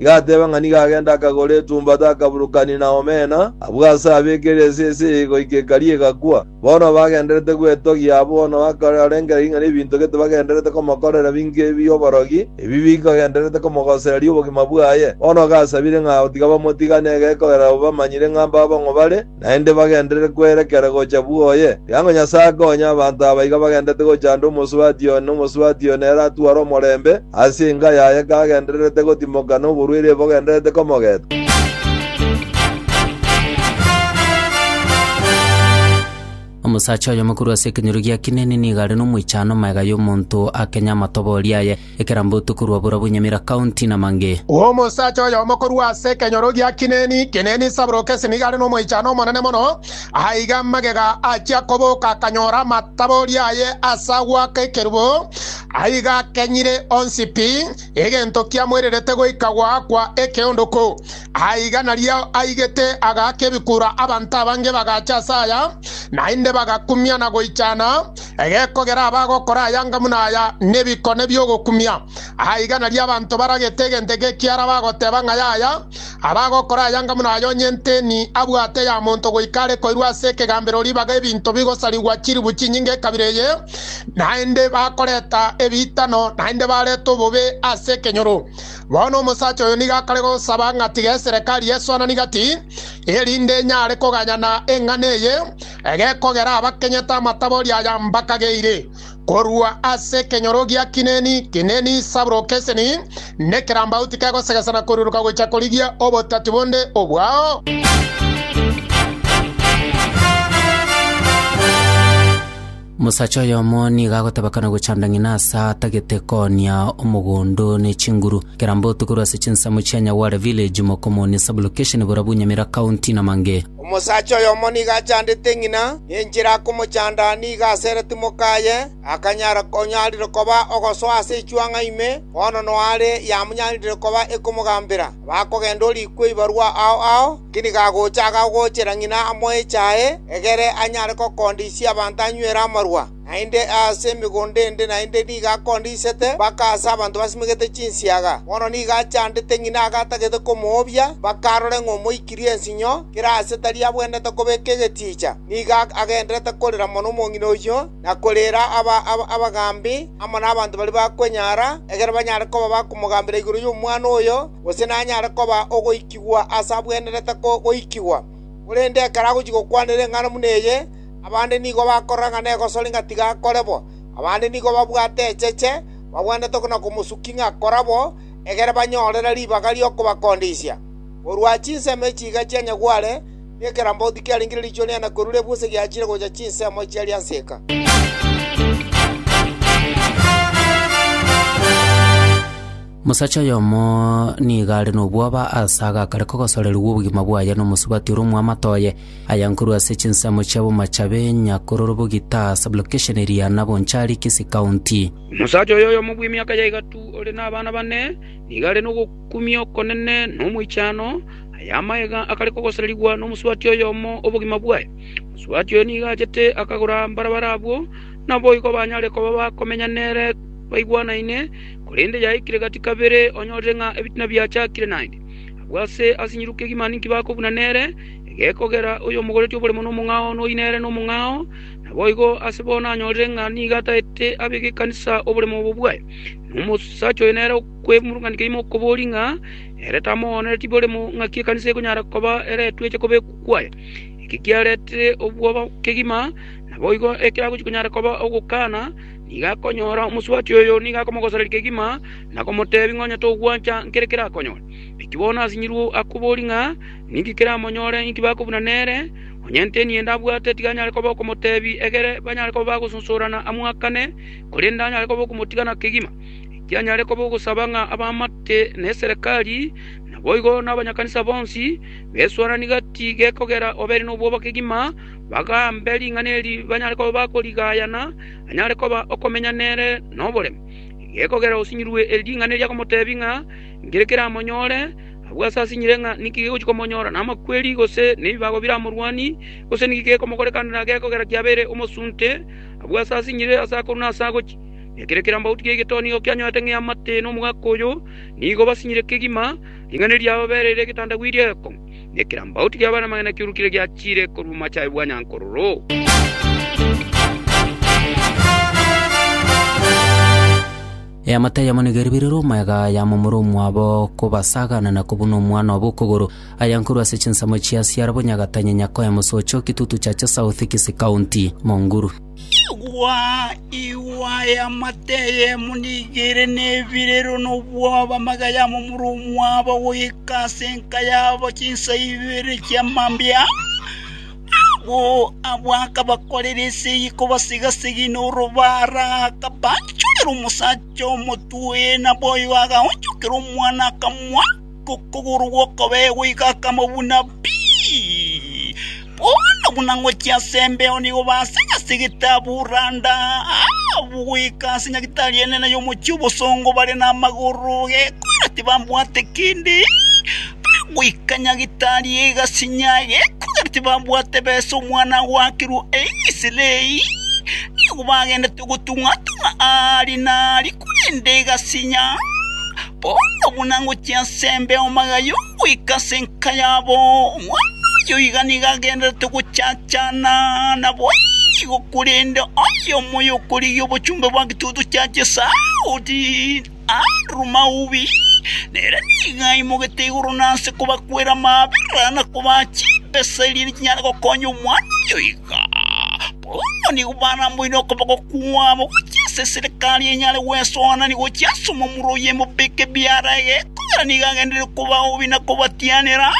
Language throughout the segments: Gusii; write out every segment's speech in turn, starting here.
Gateeba ng'a nigo agende akagore etumbato akaburukania na omena, abwo ase abeekere esese eye goika ekari egakwa. Bono bagenderete gwetogia abwo na bakararengera ring'ana ebinto gete bagenderete komokorera binge ebi'oborogi, ebi bikagenderete komogosereria obogima bwaye. Bono gasabire ng'a otiga bamotigane egekogera abwo bamanyire ng'a mbabong'u bare, naende bagenderere kwerekera gocha bw'oye, tiga ng'a Nyasae akonye abanto aba iga bagendererete gochanda omosubati one, omosubati one ere atware omorembe ase enka yaye kagendererete gotimoka noborwaire bogendererete komogeta. Omosacha oyomo korwa ase ekenyoro gia Kineni nigo are nomoichano magega y'omonto akenye amatoboori aye. Ekerambo tokorwa Burabwo Nyamira County na mange. Omosacha oyomo korwa ase ekenyoro gia Kineni, Kineni Sabrokesi, nigo are nomoichano omonene mono. Aiga magega achia koboka akanyora amatabori aye ase agoaka ekerubo, aiga akenyire onsi pi, egento kiamoirerete goika goakwa ekeondoku. Aiga nario aigete agaaka ebikura abanto abange bagacha ase aya, naende bagakumia na goichana Egekogera abagokora ayanga buna aya nebikone bi'ogokumia, aa igana ri'abanto baragete egento eke ekiara bagoteba ng'a yaya. Abagokora ayanga buna aya onye nteni abwate ya monto goika are koirwa ase ekegambero ribaga ebinto bigosarigwa chilifu chinyinge ekabira eye, naende bakoreta ebiitano naende barete obobe ase ekenyoro. Bono omosacha oyo nigo akare gosaba ng'a tiga eserekari esuanani gati, erinde enyare koganyana eng'ana eye, Egekogera abakenyete amatabori aya mbakageire korwa ase ekenyoro gia Kineni, Kineni, Sabro, Keseni, nekerambauti kegosegesana koruruka gochia korigia obotatu bonde obwao. Mosacha oyomo nigo agotebekana gochanda ng'ina ase atagete koonia omogondo ne chinguru. Kerambauti korwa ase chinsemo chia Nyagware Village, Mokomoni Sub-location, Burabu, Nyamira County, Namange. Omosacha oyomo nigo achandete ng'ina, ne enchera akomochanda nigo asere timoka aye, akanyara onyarire koba ogosoa ase echuang'a ime, bono noare yamonyarire koba ekomogambera. Bakogenda orikwe ibarwa ao ao, inki nigo agocha agagochera ng'ina amoe echae, egere anyare gokondisia abanto anywere amarwa? naende aase emegondo ende naende nigo akondisete mpaka aase abanto basimegete chinsiaga. Bono nigo achandete ng'ina age atagete komoobia, mpaka arore ng'a omoikirie ensinyo, kera aase tari abwenerete kobeka egetiicha. Nigo agenderete korera mono omong'ina oyio, na koreera abagaambi, amo nabanto baria bakwenyara, ekero banyare koba bakomogambera igoro y'omwana oyo, gose nanyare koba ogoikigwa aase abwenerete goikigwa. Korende ekero agochia gokwanera eng'ana buna eye, Abande nigo bakoranga negosori ng'a tiga akore bo, abande nigo babwate echeche, babwanete na komosukia ng'a kora bo, egere banyorere ribaga ri'okobakondisia. Korwa chinsemo echi iga chia nyagware, nekerambe oti kiarengire riichwe riane korwa riabwo ase giachire gocha chinsemo chia riaseka. Mosacha oyomo nigo are nobwoba ase agakare kogosorerigwa obogima bwaye nomosubati ore omoamate oye. Aya nkorwa ase chinsemo chia bomachabe, Nyakororobo, Gitaha, sublocation eria, na Bonchari, Kisii County. Omosacha oyo oyomo bw'emiaka ya igatu ore nabana bane nigo are nogokumia okonene na omoichano. Aya amagega akare kogosererigwa nomosubati oyomo obogima bwaye. Omosubati oyo nigo achete akagora mbarabara abwo naboigo banyare koba bakomenya nere baigwanaine, korende yaikire gati kabere onyorire ng'a ebitina biachakire naende. Abwo ase asinyiruke gimani nkibakobuna nere. Egekogera oyomogoretie oborimo nomong'ao noyi nere nomong'ao, naboigo ase bo nanyorire ng'a nigo ataete abe gekanisa oborimo obo bwaye. Na omosacha oyo nere okwemurunganigwa ime okoboria ng'a ere tamoonereti borimo ng'aki ekanisa ekonyara koba ere etweche kobekwa kwaye. Eki kiaretire obwoba kegima, naboigo ekero agochia konyara koba ogokana, nigo akonyora omosubati oyo nigo akomogosereria kegima na komoteebia ng'a onye togwancha nkere kerakonyore. Naki bono asinyiruo akoboria ng'a Ninki kiramonyore? Inki bakobuna nere? Onye nteni ende abwate, tiga anyare koba okomoteebia egere banyare koba bagosunsurana amoakane, korende anyare koba okomotigana kegima. Ekiagera anyare koba ogosaba ng'a abaamate neserekari, naboigo nabanyakanisa bonsi, besuarananie gati gekogera obere nobwoba kegima, bagaambe ring'ana eri banyare koba bakorigayana, anyare koba okomenya nere noboremu. Gekogera osinyirwe eri ring'ana eri agomoteebia ng'a nki kiramonyore, Agwo aase asinyire ng'a ninki gegochia komonyora, namakweri, gose nebibago biramorwanie, gose ninki gekomokorekanera gekogera kiabeire omosunte. Agwo aase asinyire ase akorwa na ase agochia, na ekero ekerambaoti ki'egetoo nigo kianyorete ng'a eamate nomogaka oyo, nigo basinyire kegima, ring'ana eriabo bereire egetandagwa erieko, na ekerambaoti ki'abana-magena kiurukire giachiire korwa omochaye bwa nyankororo. Eamate eyemo nigo eribirirwe omwega ya momura omwabo kobasagana na kobuna omwana obo okogoro. Aya nkorwa ase chinsemo chia Siara bonyagatanya Nyakoya Mosocho Kitutu Chacha South Kisi County Monguru. Igwa, igwa, eamate eyemo nigo ere nebirirwe nobwoba amagega ya momura omwabo goika ase enka yabo chinsa ibere chi'amambia. Nabo abwo akabakorera esegi kobasega-segi norobara, akabaanchorera omosacha omotwe, na boyo agaonchokera omwana akamoaka okogoro gw'okobegwa iga akamobuna pi. Bono buna ngochia ase embeo nigo basega-segete abwo randa, abwo goika ase nyagitari enene y'omochie obosongo bare namagoro gekora tibambwate kende. goika nyagetari egasinya gekogera tibabwate besa omwana agoakirwe Eisiraeli. Nigo bagendete gotung'a-tung'a aare na aare korende egasinya, bono buna ngochia ase embe y'amagayo goika ase enka yabo. Omwana oyio iga nigo agendererete gochachana naboigo korende oyomo y'okorigia obochumbe bwa gitutu kia Chisaudi. Andrew Maubi, nere nigo aimogete igoro na nse kobakwera amabera na kobaa chimbesa erio chinyare gokonya omwana oyo iga. Bono nigo baramboire okoboko kwabo gochia ase eserekari enyare gwesoanani gochia ase omomura o Yemobeke biara egeko ere nigo agenderire kobaobi na kobatianera,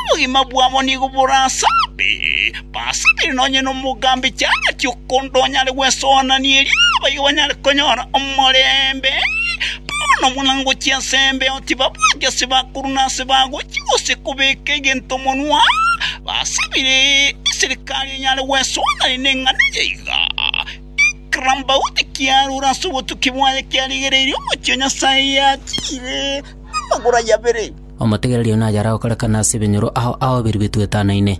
obogima bwabo nigo borasabe. Basibire nonye nomogambi chang'ati okonto onyare gwesoanania erio abaiga banyare konyora omorembe. Bono buna ngochia ensembeo tibabwati ase bakuru na ase bagochi gose kobeka egento monwa. Basibire eserikari enyare gwesoanania neng'ana eye iga. Ikara mbauti kiarure ase obotuki bwaye kiarigereirie omochie o Nyasae yatiire namagoro aye abere. Omotegereria oyo naye arakore kane ase ebenyoro ao aoberigwe twetanaine.